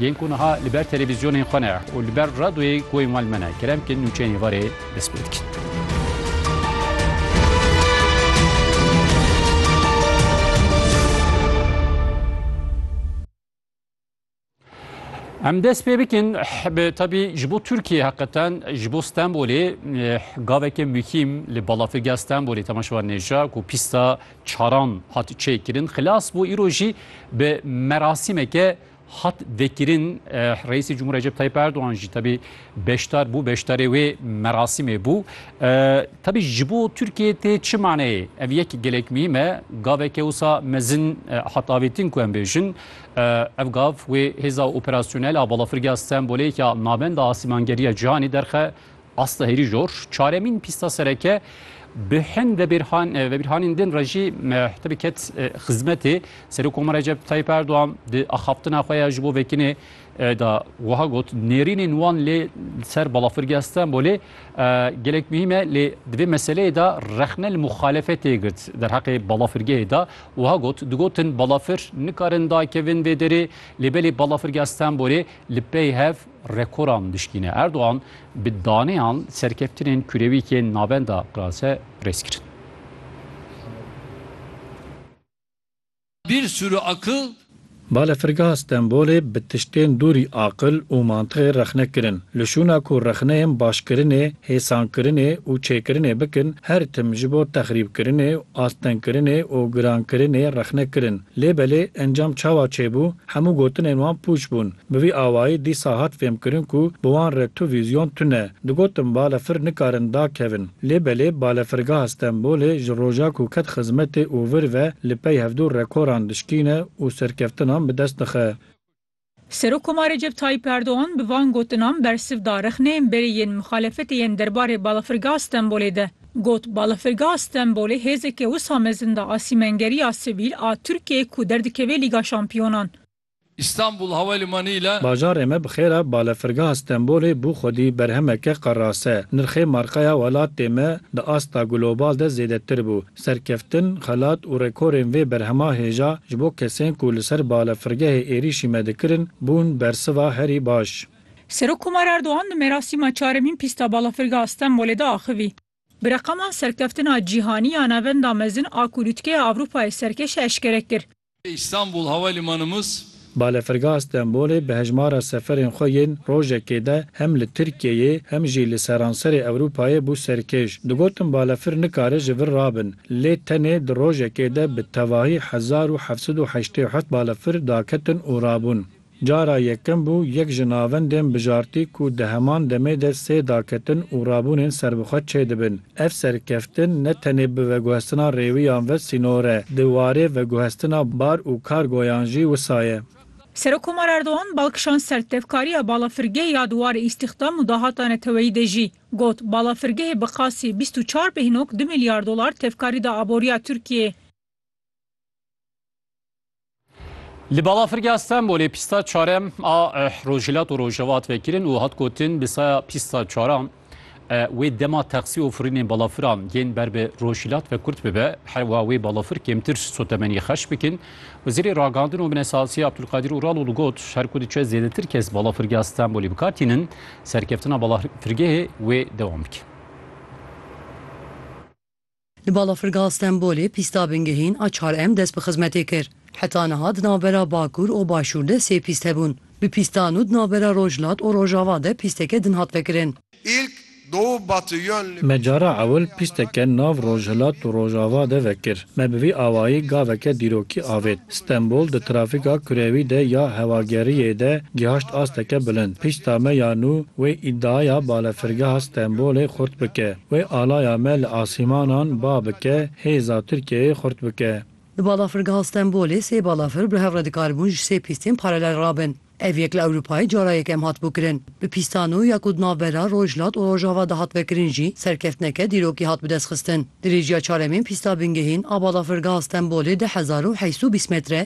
Yên ku niha li ber televîzyonên xwe ne û li ber radyoyê guhên wan li me ne, kerem bikin nûçeyên êvarê dest pê bikin. Em dest pê bikin bi tabî ji bo Tirkiyeyê heqetan ji bo Stenbolê gaveke muhîm li balafirgeha Stenbolê temaşevan nêja ku pîsta çaran hat çêkirin xilas bû îro jî bi merasîmeke hat vekirin Reîsê Cumhur Recep Tayyip Erdogan jî tebî beşdar bû beşdarê wê merasîmê bû. Tebî ji bo Tirkiyeyê tê çi maneyê? Ev yek gelek mîm e. Gaveke wisa mezin hat avêtin ku em bêjin. Ev gav wê hêza operasyonel a balafirgeha Stenbolê ya Navenda Asîmangeriya Cîhanê derxe Aslı hêrî jor, çaremîn pîsta sereke bi hin vebîrhanên din re jî tevî ket xizmetê. Serokoma Recep Tayyîp Erdogan di axaftina xwe ya ji bo Vekinê de wiha got, Nêrînên wan lê li ser balafirgeha Stenbolê gelek muhîm e lê di vê meseleyê de rexne li muxalefetê girt. Derheqê balafirgehê de wiha got, Digotin balafir nikarin dakevin vê derê lê belê balafirgeha Stenbolê li pey hev Rekoran dişkîne. Erdogan bi daneyan serkeftinên kurewîkên navenda Qirase rêz kirin. Bir sürü akıl. Balafirgeha Stenbolê bi tiştên dûrî aqil û mantixê rexne kirin. Li şûna ku rexneyên başkirinê, hêsankirinê û çêkirinê bikin, her tim ji bo texrîbkirinê, astengkirinê û girankirinê rexne kirin. Lê belê encam çawa çêbû, hemû gotinên wan pûç bûn. Bi vî awayî dîsa hat fêmkirin ku bi wan re tu vîzyon tune. Digotin balefir nikarin dakevin. Lê belê balefirgeha Stenbolê ji roja ku ket xizmetê û vir ve li pey hevdû rekoran dişkîne û serkeftinan bi dest dixe. Serokkomarê Recep Tayyîp Erdogan bi van gotinan bersiv da rexneyên berê yên mixalefetê yên derbarê Balafirgeha Stenbolê de. Got, Balafirgeha Stenbolê hêzeke wisa mezin da a sîmengeriya sivîl a Tirkiyeyê ku derdikeve Lîga Şampiyonan. Îstanbul Havalimanî ile. Bajarê me bi xêr e, Balafirgeha Stenbolê bû xwedî berhemeke qerase. Nirxê markaya welatê me di asta global de zêdetir bû. Serkeftin, xelat û rekorên vê berhema hêja ji bo kesên ku li ser balafirgehê êrîşî me dikirin bûn bersiva herî baş. Serokkomar Erdogan di merasîma çaremîn pîsta balafirgeha Stenbolê de axivî. Bi reqaman serkeftina cîhanî ya navenda mezin a ku lûtkeya Ewropayê serkeş e eşkere kir. Îstanbul Havalimanımız. Balefirgeha Stenbolê bi hejmara seferên xwe yên rojekê de hem li Tirkiyeyê hem jî li seranserê Ewropayê bû serkêş. Digotin balefir nikare ji vir rabin, lê tenê di rojekê de bi tevahî hezar û heft sed û heştê û heft balefir daketin û rabûn. Cara yekem bû yek ji navendên bijartî ku di heman demê de sê daketin û rabûnên serbixwe çêdibin. Ev serkeftin ne tenê bi veguhestina rêwiyan ve sînor e, di warê veguhestina bar û kargoyan jî wisa ye. Serokkomar Erdogan bal kişand ser tevkariya balafirgeh ya di warê îstîxdam û dahata neteweyî de jî. Got, Balafirgehê bi qasî bîst û çar bêhnok du milyar dolar tevkarî da aboriya Tirkiyeyê. Li balafirgeha Stenbolê pîsta çarem a Rojhilat û Rojhevat vekirin û hat gotin bi saya pîsta çaran wê dema taksî û firînên balafiran yên ber bi rojhilat ve kurt bibe her wa wê balafir kêmtir sotemenî xerç bikin. Wezîrê Ragandin û Minesazî Abdulkadir Uraloğlu got her ku diçe zêdetir kes balafirgeha Stenbolê bikar tînin serkeftina balafirgehê wê dewam bike. Di balafirgeha Stenbolê pîsta bingehîn a çar em dest bi xizmetê kir. Heta niha di navbera Bakur û Başûr de sê pîst hebûn. Bi pîsta nû di navbera Rojhilat û Rojava de pîsteke din hat vekirin. Me cara ewil pîsteke nav Rojhilat û Rojava de vekir. Me bi vî awayî gaveke dîrokî avêt. Stenbol di trafîka kurewî de ya hewageriyê de gihaşt asteke bilind. Pîsta me ya nû wê îdiaya balefirgeha Stenbolê xurt bike. Wê alaya me li asîmanan ba bike, hêza Tirkiyeyê xurt bike. Di balafirgeha Stenbolê sê balafir bi hev re dikaribûn ji sê pîstên paralel rabin. Ev yek li Ewropayê cara yekem hat bûkirin. Bi pîsta nû ya ku di navbera Rojhilat û Rojava de hat vekirin jî serkeftineke dîrokî hat bidestxistin. Dirêjiya çaremên pîsta bingehîn a balafirgeha Stenbolê deh hezar û heyst û bîst metre,